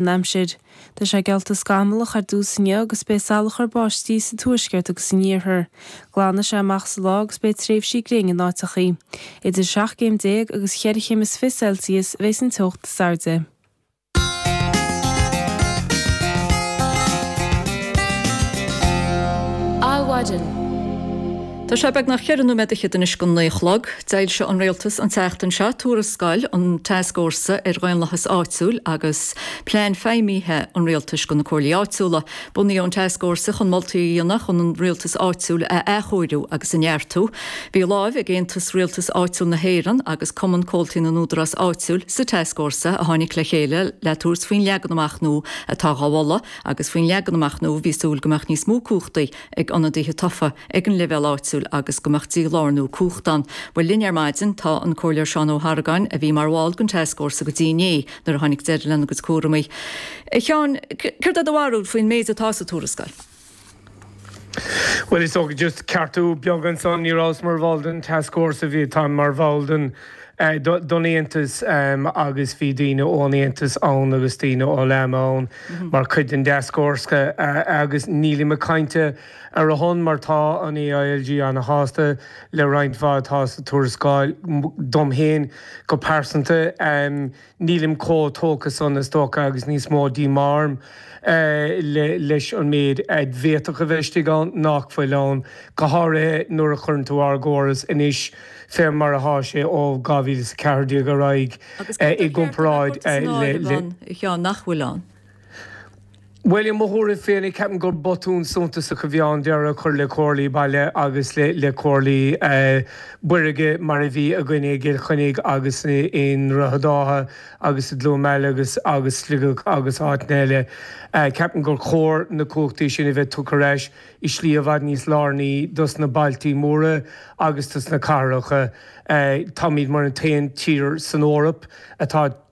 an aimsir. Tá sé geallta scamallach ar dtús inniu agus beidh salachar báistí sa tuaisceart agus san iarthar. Glanfaidh sé amach sa lá agus beidh tréimhsí gréine in áiteachaí. Idir 17 céim agus 4 chéim is fiche Celsius a bheidh sa teocht Dé Sathairn. Adhmhaidin. Tá sé beagnach ceithre nóiméad anois chun a naoi a chlog. D'fhoilsigh an Rialtas an tseachtain seo tuarascáil an Tascfhórsa ar Dhaonlathas Áitiúil agus plean feidhmithe an Rialtais do na Comhairlí Áitiúla. Bunaíodh an Tascfhórsa chun moltaí a dhéanamh chun an rialtas áitiúil a athchóiriú agus a neartú. Bhí lámh ag Aontas Rialtas Áitiúil na hÉireann agus Cumann Comhaltaí na nÚdarás Áitiúil sa Tascfhórsa a tháinig le chéile le tabhairt faoin leagan amach nua atá á mholadh agus faoin leagan amach nua bhí súil go mbeadh níos mó cumhachtaí ag ionadaithe tofa ag an leibhéal áitiúil agus go mbeadh dí-lárnú cumhachta ann. Bhuel, linn ar maidin tá an Comhairleoir Seán Ó hArgáin, a bhí mar bhall den Tascfhórsa go dtí inné nuair a tháinig deireadh lena gcuid cúramaí. A Sheáin, céard é do bharúil faoin méid atá sa tuarascáil? Bhuel, just ceartú beag ansan, ní rabhas mar bhall den Tascfhórsa, bhí, táim mar bhall den. don Aontas agus bhí daoine ón Aontas ann agus daoine ó LAMA ann mar chuid den dtascfhórsa agus nílim ag caint ar a son mar tá an AILG ana-shásta le roinnt mhaith atá sa tuarascáil. Dom féin go pearsanta. Nílim chomh tógtha san, is dócha, agus níos mó díomá orm leis an méid a bhféadfadh a bheith istigh ann nach bhfuil ann, go háirithe nuair a chuireann tú ár gcóras anois, fé mar atá sé ó 2014 ar aghaidh, i gcomparáid le. Bhuel, i mo thuairim féin, ceapaim gur botún suntasach a bhí ann deireadh a chur le comhairlí baile agus le comhairlí buirge mar a bhí againne i gCill Chainnigh agus i nDroichead Átha agus i gCluain Meala agus Sligeach agus áiteanna eile. Ceapaim gur chóir na cumhachtaí sin a bheith tugtha ar ais i slí i bhfad níos lárnaí dos na bailtí móra agus dos na cathracha. Táimid mar an t-aon tír san Eoraip atá.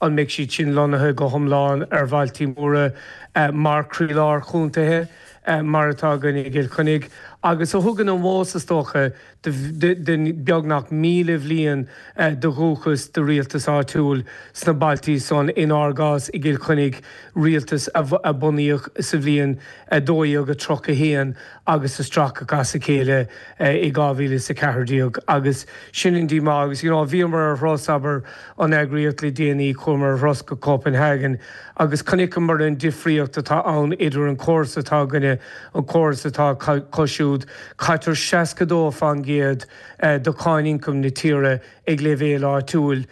an mbeidh siad sin lonnaithe go hiomlán ar bhailtí móra mar croílár chontaethe, mar atá againn i gCill Chainnigh, agus a thugann an meas, is dócha, de beagnach míle bhliain de dhúchas do rialtas áitiúil sna bailtí san, inár gcás i gCill Chainnigh, rialtas a bunaíodh sa bhliain 1231 agus a stracadh as a chéile i 2014 agus sin an díomá agus you know bhíomar ar thuras, abair, an eagraíocht le déanaí, chuamar ar thuras go Copenhagen agus chonaiceamar an difríocht atá ann idir an córas atá againne agus an córas atá acu siúd, caitear 62% de cháin ioncaim na tíre i. Ag leibhéal áitiúil,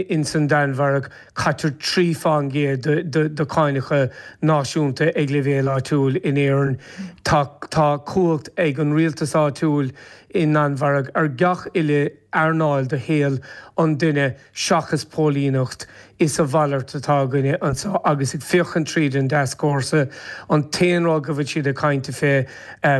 insan Danmhairg, caitear trí fán gcéad de cáineacha náisiúnta ag leibhéal áitiúil in Éirinn. Tá cumhacht ag an rialtas áitiúil sa Danmhairg ar gach uile earnáil de shaol an duine seachas póilíneacht. Is a mhalairt atá againne anseo agus ag féachaint tríd an dtascfhórsa, an t-aon rud go bhfuil siad ag caint fé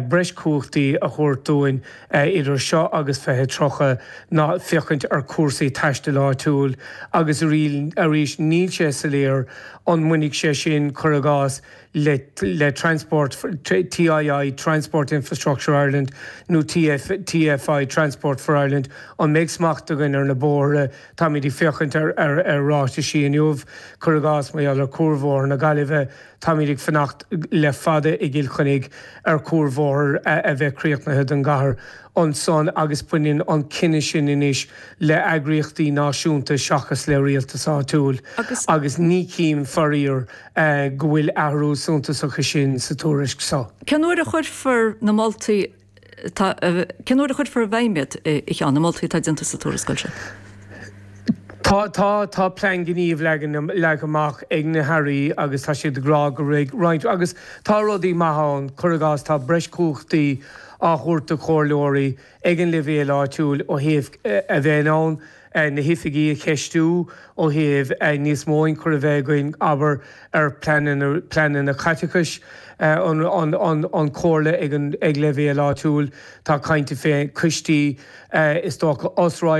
breis cumhachtaí a thabhairt dúinn, idir seo agus 2030 ná féachaint ar chúrsaí taistil áitiúil agus arís níl sé soiléir an mbainfidh sé sin, cuir i gcás, le Transport TII, Transport Infrastructure Ireland, nó TFI, Transport for Ireland. An mbeidh smacht againn ar na bóithre? Táimid ag féachaint ar ráitisí inniu, cuir i gcás, mar gheall ar Chuarbhóthar na Gaillimhe, Táimid ag fanacht le fada i gCill Chainnigh ar chuarbhóthar a bheith críochnaithe don gcathair ansan agus baineann an cinneadh sin anois le heagraíochtaí náisiúnta seachas le rialtas áitiúil agus ní chím, faraor, go bhfuil athrú suntasach ansan sa tuairisc so. Cén uair a chuirfear na moltaí Tá cén uair a chuirfear i bhfeidhm iad a Sheáin, na moltaí atá déanta sa tuarascáil seo. Tá, tá plean gnímh leagtha amach ag na hAirí agus tá siad ag rá go mbeidh roinnt, agus tá rudaí maithe ann, cuir i gcás tá breis cumhachtaí á thabhairt do chomhairleoirí ag an leibhéal áitiúil ó thaobh a bheith in ann na hoifigigh a cheistiú ó thaobh níos mó ionchur a bheith againn, abair, ar phleananna caiteachais an Chomhairle ag leibhéal áitiúil. Tá caint fé choistí, is dócha, os.